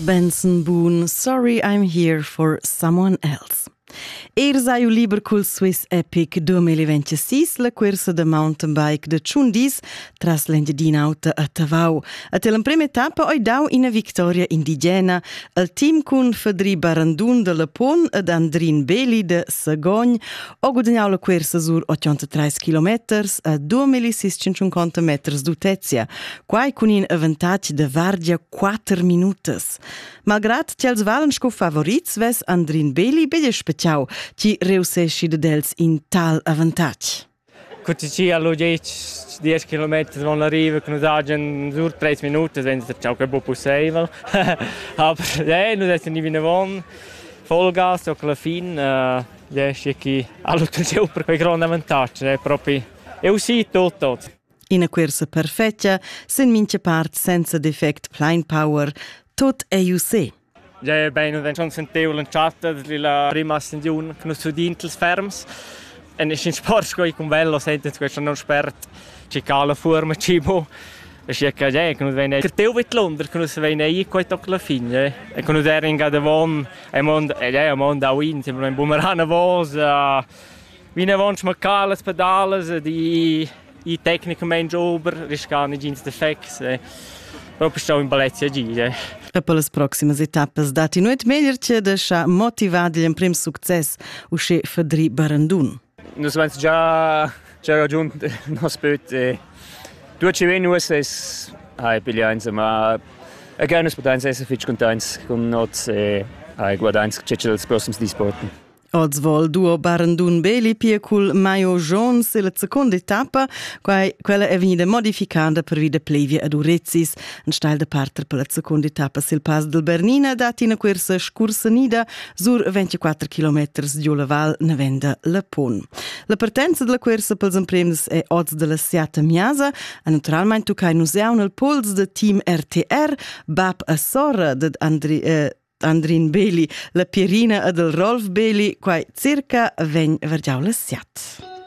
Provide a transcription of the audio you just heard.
Benson Boone, Sorry I'm Here for Someone Else. Ir sai u liber cul Swiss Epic 2026 la cursa da mountain bike de Ciundis tras l'Engiadin'Auta a Tavau. A te l'emprema etappa oi dau ina victoria indigena al team cun Fedri Barandun de Lapon ed Andrin Beli de Sagogn ho gudagnau la cursa sur 83 km a 2650 meters d'utezia Quai cun in avantatg da vardia quatter minutas. Malgrat ch'els valen sco favorits vess Andrin Beli betg spetgau chi reusseschi dad els in tal avantatg. Quando ci allo 10 km vanno arriva con dagen sur 3 minuti senza ciò che è possibile aber eh non è ni vinavon Vollgas o alla fin eh riesce chi allo super quei grande avantaggio è proprio è uscito tutto Ina cuorsa perfetga sin mincha part senza defect plain power, tot è ju se. Ja è bene denton sentevel in chatta la prima ascensiun che nus udin ils ferms. En in sport sco con bello sentis questo non spert ci cala forma cibo. E si che ja che nus vene crteu vit Londra che nus vene i quei toc la fine e che nus erin ga de von e mond e ja mond a win sembra un bumerana vos Vinavant smarcar las pedalas ed ir i tecnicamain ober, riscar negins defects. E propi stau in palazzi a gire. E per las proximas etappas datti nuot meglier che da scha motivat igl emprim success, usche Fedri Barandun. Nus vens già già raggiunt nos böt e due ci ven uss hai piglià insomma e gerne potenza essere fitg contents con noi e hai guardato che c'è els prossimi dis porten. Oz vol duo Barendun Beli pia cul Maio Jones e la seconda etappa, quai quella è vegnida modificada per via Plevia ad Urezis. En stal da parter per la seconda etappa sil Pass del Bernina dat ina cursa scursanida sur 24 km giu la val Nevenda Lapun. La partenza della cursa pels emprems è oz della Siata Miasa, e naturalmente tuccai nus jau nel pols da team RTR, bab a sorra ded Andri eh, Andrin Beli, la Pierina ed il Rolf Beli, quai circa vegn vargiau la siat.